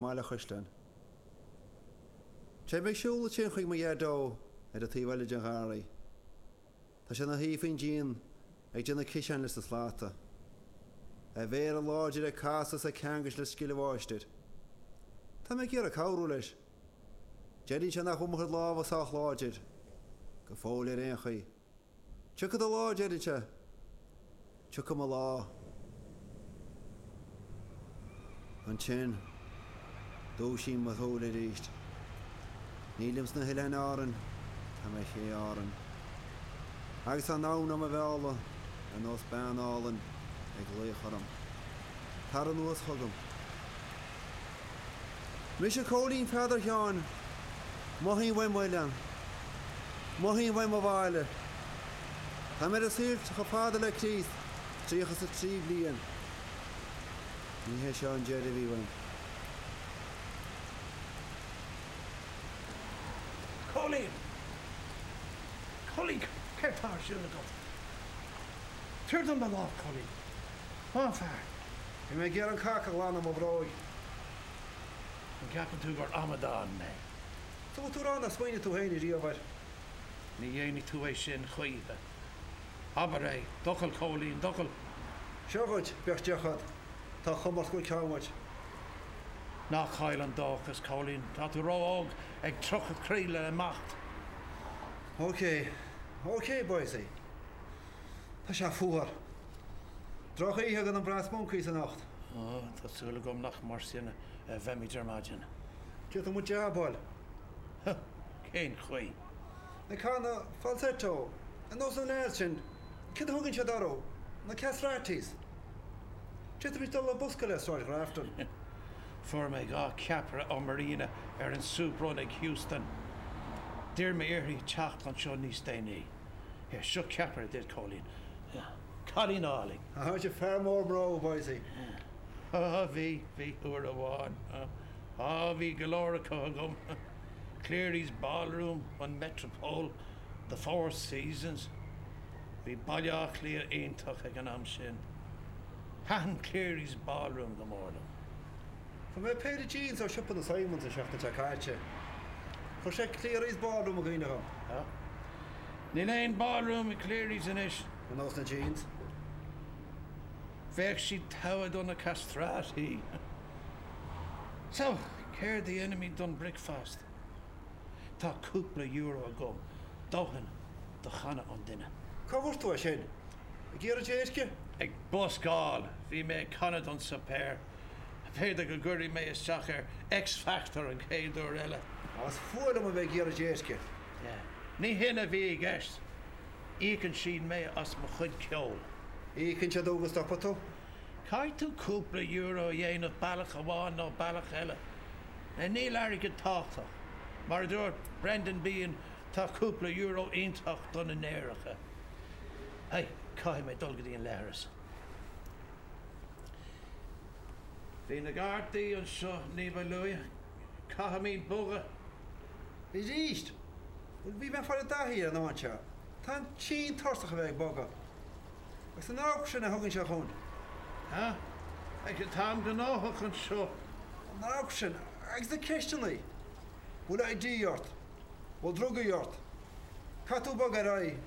mBaile an Chaisleáin. Téim ag siúl le tinn chuig mo Dhaideo ar an taobh eile den gharraí. Tá sé ina shuí faoin díon ag déanamh ciseáin leis na slata. A mhéara láidir ag casadh is ag ceangailt le scil an mháistir. Tá mé ag iarraidh cabhrú leis. Deireann sé nach bhfuil mo chuid lámha sách láidir, go fóill ar aon chaoi. Tiocfaidh do lá, a deireann sé. Tiocfaidh mo lá. Ansin, dúisím mo shúile arís. Nílim sna hOileáin Árann, tá mé ar Ché Árann. Agus tá an abhainn do mo mhealladh, ar nós bean álainn, ag glaoch orm. Tar anuas chugam. Mise Cóilín Pheadar Sheáin, mothaím uaim m'oileán, mothaím uaim mo bhaile. Tá mé ar an saol chomh fada le Críost tríocha is a trí bliain. Ní hé seo an deireadh a bhí uaim. Cóilín! Cóilín, céard tá ar siúl agat? Tabhair dom do lámh, Cóilín. Tá an fear. Bhí mé ag iarraidh an cac a ghlanadh de mo bhróg. An gceapann tú gur amadán mé? Bhfuil tú ag rá nár smaoinigh tú féin riamh air? Ní dhéanfaidh tú é sin choíche. Abair é, d'fhocal Cóilín, d'fhocal. Seo dhuit, bíodh deoch agat. Tá comórtas go ceann dhuit. Ná caill an dóchas, Cóilín. Tá tú ró-óg, ag tríocha trí le imeacht. OK. OK, Boise. Tá sé fuar. Drochoíche do na Brass Monkeys anocht. Ó, tá súil agam nach mar sin a bheimid ar maidin. D'fhéadfadh muid jab a fháil. Cén chaoi? Ag canadh falsetto, ar nós na lads sin, céard a thugann siad orthu, na castratis? D'fhéadfaimis dul ag buscáil i Sráid Ghrafton. Fuair mé dhá ceapaire ó Marina ar an Soup Run ag Heuston. D'iarr mé uirthi teacht anseo níos déanaí. Yes, sure, ceapaire, a deir Cóilín. Yeah, cailín álainn. A Tháite, fear mór mná, was he? Yeah. Á, bhí, bhí, uair amháin. Á, bhí go leor acu agam. Clery's Ballroom, an Metropole, the Four Seasons. Bhí Baile Átha Cliath iontach ag an am sin. Thaitin Clery's Ballroom go mór liom. Fuair mé péire jeans ó siopa na Simons an seachtain seo caite. Chuir sé Clery's Ballroom i gcuimhne dhom. Níl aon ballroom i Clery's anois. Ar nós na jeans. Bheadh siad togha do na castrati. So, céard a dhéanfaimid don breakfast? Tá cúpla euro agam, dóthain do channa an duine. Cá bhfuair tú é sin? Ag iarraidh déirce? Ag buscáil! Bhí mé ag canadh don suipéar. B'fhéidir go gcuirfidh mé isteach ar X-Factor an chéad uair eile. Ach is fuath liom a bheith ag iarraidh déirce. Ní shin a bhí i gceist. Íocann siad mé as mo chuid ceoil. Íocann siad thú go stopfaidh tú? Caithfidh tú cúpla euro a dhéanamh bealach amháin nó bealach eile. Níl airgead tábhachtach. Mar a dúirt Brendan Behan, tá cúpla euro iontach do na néaracha. Hey, caithfidh mé dul go dtí an leithreas. Bhí na Gardaí anseo ní ba luaithe. Caithfimid bogadh! Arís! Bhí mé ag fáil i dtaithí ar an cheann seo. Táim tinn tuirseach a bheith ag bogadh. Agus an amharc sin a thugann sé chugainn. Ha! Fecker, táim gnóthach anseo! An amharc sin, agus na ceisteanna. An bhfuil ID ort? An bhfuil drugaí ort? Caithfidh tú bogadh ar aghaidh.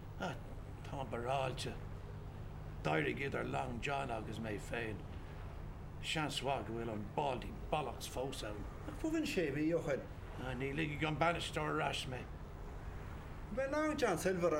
Ah, táim barráilte. D'éirigh idir Long John agus mé féin. Seans mhaith go bhfuil an Baldy Bollocks fós ann. Nach cuimhin sé mhí ó shoin? Ah, ní ligfidh an bainisteoir ar ais mé. An b'é Long John Silver an